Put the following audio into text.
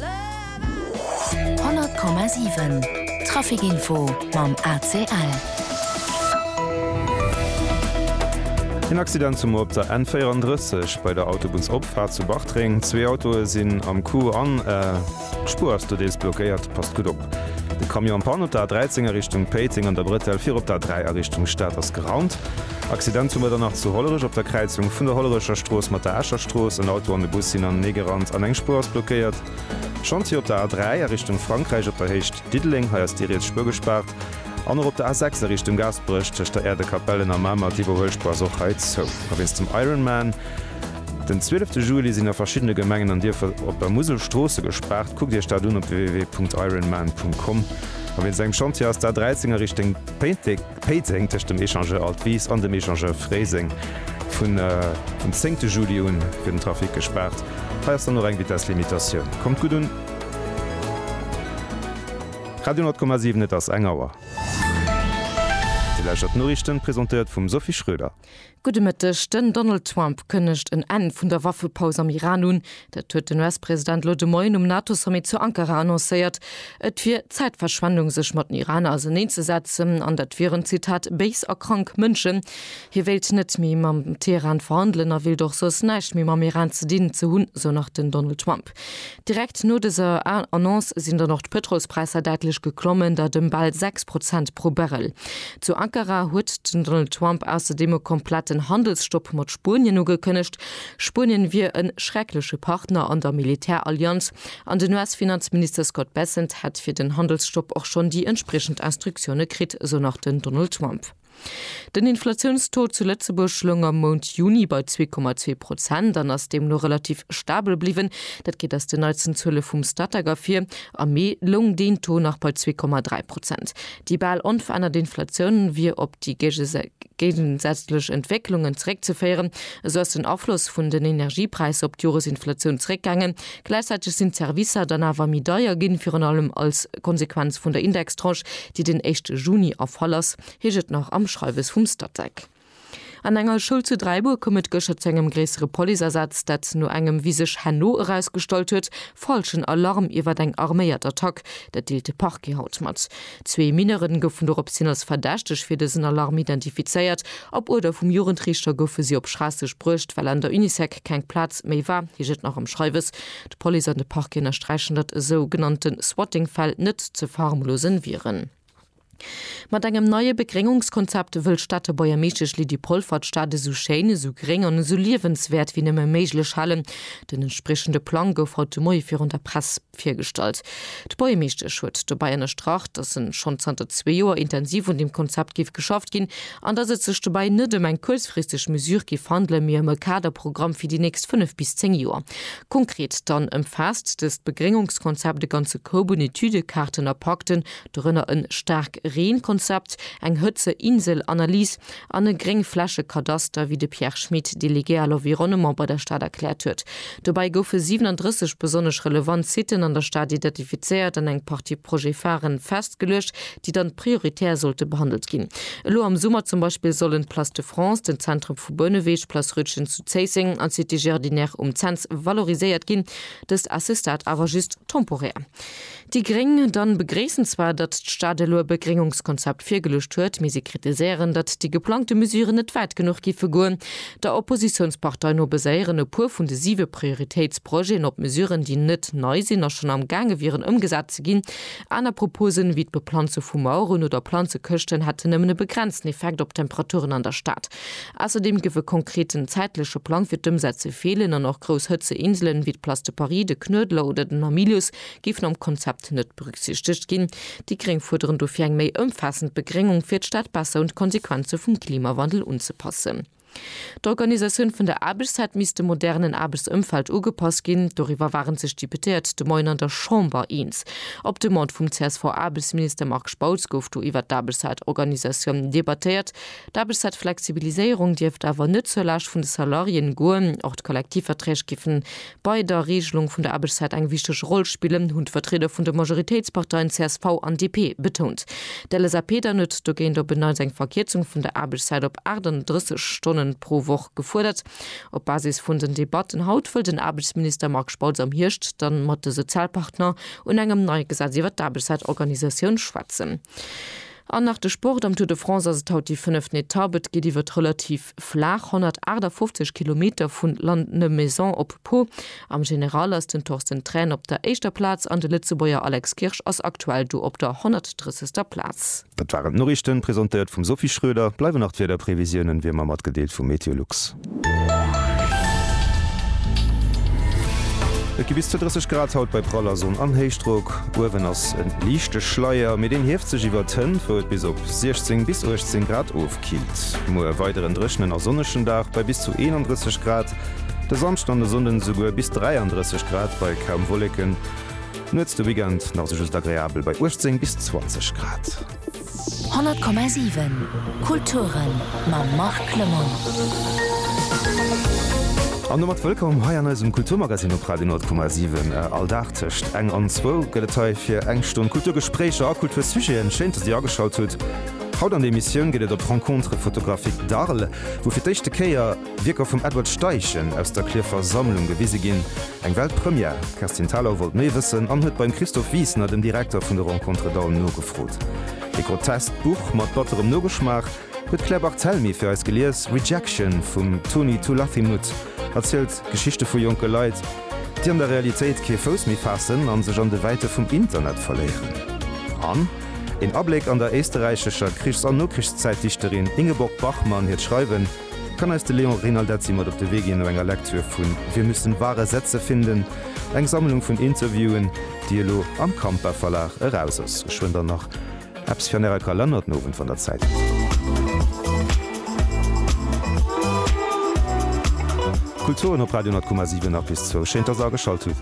100,7 Trafic Info mam ACL. En Accident zum op der N34 bei der Autobunnsopfahrt zu Bartreng. Zwee Autoe sinn am Coup an d'Spuer ass do deels blockéiert. Passt gutt op. De Camion am Panne op der A13 a Richtung Péiteng an der Bretelle fir op der A3 a Richtung Stad ass geraumt. Accident zu Mëtternach zu Hollerech op der Kräizung vun der Hollerecher Strooss mat der Escher Strooss. En Auto an e Bus sinn anenee gerannt an eng Spuer ass blockéiert. Chantier op der A3 a Richtung Frankräich op der Héicht Diddeleng, hei ass déi riets Spuer gespaart. An och op der A6 a Richtung Gaasperech tëscht der Äerdekapellen a Mamer, d'Iwwerhuelspuer ass och hei zou. A wéinst dem Ironman den 12 Juli sinn a verschiddene Gemengen an Dierfer op der Musel Stroosse gespaart. Kuckt Iech dat un op www.ironman.com. A wéinst engem Chantier ass d'A13 a Richtung Péiteng. Péiteng, tëscht dem Échangeur Altwis an dem Échangeur Fréiseng. Vun dem zéngte Juli un wier den Trafic gespaart. Hei ass dann och eng Vitesslimitatioun. Kommt gutt un! Radio 10,7 Et ass eng Auer. Dir lauschtert d'Noriichten, presentéiert vum Sophie Schröder. Gudde Mëtteg, Den Donald Trump kënnegt en Enn vun der Waffepaus am Iran un. Dat huet den US-President elo de Moien um NATO-Sommet zu Ankara annoncéiert. Et wier Zäitverschwendung sech mat den Iraner auseneenzesetzen an dat wieren, Zitat, béis a krank Mënschen. Hie wéilt net méi mam Teheran verhandelen a wéilt och soss näischt méi mam Iran ze dinn ze hunn, sou nach den Donald Trump. Direkt no dëser Annonce sinn dann och d'Pëtrolspräisser däitlech geklommen, dat ëm bal 6 Prozent pro Barrel. Zu Ankara huet den Donald Trump ausserdeem e kompletten Handelsstopp mat Spuenien ugekënnegt. Spuenien wier e schreckleche Partner an der Militärallianz an den US-Finanzminister Scott Bessent hätt fir den Handelsstopp och schonn déi entspriechend Instruktioune kritt, esou nach den Donald Trump. Den Inflatiounstaux zu Lëtzebuerg loung am Mount Juni bei zwee Komma zwee Prozent an ass deemno relativ stabel bliwwen. Dat geet aus den neitsten Zuele vum Statec ervir. Am Mee loung deen Taux nach bei zwee Komma dräi Prozent. Déi bal onverännert Inflatioun wier op déi géigesätzlech Entwécklungen zeréckzeféieren. Esou ass den Afloss vun den Energiepräisser op d'Joresinflatioun zeréckgaangen, Gläichzäiteg sinn d'Servicer dann awer méi deier ginn, virun allem als Konsequenz vun der Indextranche, déi den éischte Juni erfall ass, heescht et nach am Schreiwes vum Statec. An enger Schoul zu Dräibuer koum et gëschter zu engem gréissere Policeasaz, dat no engem, wéi sech herno erausgestallt huet, falschen Alarm iwwert eng arméiert Attack. Dat deelt de Parquet haut mat. Zwee Mineuren goufen doropshin als Verdächteg fir dësen Alarm identifizéiert. Op Uerder vum Jugendriichter goufe si op Schraasseg bruecht, well an der Unisec keng Plaz méi war, heescht et nach am Schreiwes. D'Police an de Parquet ënnersträichen, datt esou genannte Swatting-Fäll net ze verharmlose wieren. Mat engem neie Begréngungskonzept wëll d'Stater Buergermeeschtesch Lydie Polfer d'Stad esou schéin, esou gréng an esou liewenswäert wéi nëmme méiglech halen. Den entspriechende Plang gouf haut de Moie virun der Press. Virgestallt. D'Buergermeeschtesch huet dobäi ënnerstrach, datt en schonn zanter zwee Joer intensiv un deem Konzept géif geschafft ginn an datt et sech dobäi net ëm eng kuerzfristeg Mesure géif handelen, mee ëm e Kaderprogramm fir déi nächst fënnef bis zéng Joer. Konkret dann ëmfaasst dëst Begréngungskonzept e ganze Koup un Etüde, Kaarten a Pakten, dorënner e Staarkreen-Konzept, eng Hëtzeinsel-Analys, an e Gréngflächekadaster, wéi de Pierre Schmit, Délégué à l'environnement bei der Stad erkläert huet. Dobäi goufe 37 besonnesch relevant Siten an der Stad identifizéiert an eng Partie Projet-Pharen festgeluecht, déi dann prioritär sollte behandelt ginn. Elo am Summer zum Beispill sollen d'Place de France, den Zentrum vu Bouneweg, d'Place Rütgen zu Zéisseng an d'Cité Jardinière um Cents valoriséiert ginn. Dëst ass, ce stat, awer just temporär. Déi gréng dann begréissen zwar, datt d'Stad elo e Begréngungskonzept virgeluecht huet, mee si kritiséieren, datt déi geplangte Mesuren net wäit genuch giffe goen. Der Oppositiounspartei no baséieren e puer vun de siwe Prioritéitsprojeten op Mesuren, déi net nei sinn a schonn am gaange wieren ëmgesat ze ginn. Aner Proposen, wéi d'Beplanze vu Maueren oder Planzekëschten, hätten nëmmen e begrenzten Effekt op d'Temperaturen an der Stad. Ausserdeem géif e konkreten zäitleche Plang fir d'Ëmsetze feelen an och grouss Hëtzeinselen, wéi d'Place de Paris, de Knuedler oder den Hamilius, géifen am Konzept net berücksichtegt ginn. Déi Gréng fuerderen dofir eng méi ëmfaassend Begréngung, fir d'Stad besser un d'Konsequenze vum Klimawandel unzepassen. D'Organisatioun vun der Aarbechtszäit misst dem modernen Aarbechtsëmfeld ugepasst ginn. Doriwwer waren sech d'Deputéiert de Moien an der Chamber eens. Op Demande vum CSV-Aarbechtsminister Marc Spautz gouf do iwwert d'Aarbechtszaitoorganisatioun debattéiert. D'Aarbechtszaitflexibiliséierung dierft awer net zur Laascht vun de Salariéen goen. Och d'Kollektivverträg géifen Bei der Regelung vun der Aarbechtszäit eng wichteg Roll spillen, hunn d'Vertrieder vun de Majoritéitsparteien csv an DP betount. D'LSAP dann huet dogéint op en Neits eng Verkierzung vun der Aarbechtszäit op 38 Stonne pro Woch gefuerdert. Op Basis vun den Debatten haut wëll den Aarbechtsminister Marc Spautz am Hierscht da mat de Sozialpartner un engem neie Gesetz iwwert d'Aarbechtszäitorganisatioun schwätzen. An nach de Sport, Am Tour de France ass et haut déi fënneft Etapp. Et geet iwwert relativ flaach 158 Kilometer vu Lannemezan op Pau. Am General ass den Torsten Thrän op der éischter Plaz an de Lëtzebuerger Alex Kirsch ass aktuell do op der 130. Plaz. Dat waren d'Noriichten, presentéiert vum Sophie Schröder. Bleiwen nach d'Wiederprevisiounen, wéi ëmmer, matgedeelt vu MeteoLux. Et gi bis zu 30 Grad haut bei praller Sonn an Héichdrock. Uewen ass e liichte Schleier, mee deen hieft sech iwwert d'Hënnt, wou et bis op 16 bis 18 Grad ofkillt. Muer e weideren dréchnen a sonnegen Dag bei bis zu 31 Grad, de Samschden an de Sonnden esouguer bis 33 Grad bei kaum Wolleken. Nuets de Weekend nach sou just agreabel bei 18 bis 20 Grad. 100,7 Kulturen mam Marc Clement. An domat wëllkomm hei an eisem Kulturmagazin op Radio 10,7. All Dag tëscht eng an zwou gëtt et hei fir eng Stonn Kulturgespréicher a Kultursujeten. Schéin, dass Dir ageschalt hutt. Haut an der Emissioun geet et op d'Rencontre photographique d'Arles, wou fir d'éischte Kéier, Wierker vum Edward Steichen aus der Clierfer Sammlung gewise ginn. Eng Weltpremière? D'Kerstin Thalau wollt méi wëssen an huet beim Christophe Wiesner, dem Direkter vun de Rencontres d'Aulne, nogefrot. E groteskt Buch mat batterem Nogeschmaach huet d'Claire Barthelmy fir eis gelies, Rejection vum Toni Tulathimuth erzielt Geschichte vu jonke Leit, déi an der Realitéit kee Fouss méi faassen an sech an de Wäite vum Internet verléieren. An een Abléck an der éisterräichescher Krichs an Nokrichszäitdichterin Ingeborg Bachmann hiert Schreiwen. Kann eis de Léon Reinaldezzi mat op de Wee ginn no enger Lektür vu Wir müssen wahre Sätze finden, eng Sammlung vun Interviewen, déi elo am Kampa Verlag eraus ass? Geschwënn dann nach eppes fir an Ärer Kalenner den Owend, wann Der Zäit hutt. Kulturen op Radio 10,7 nach bis zwou. Schéin, dass Der ageschalt hutt.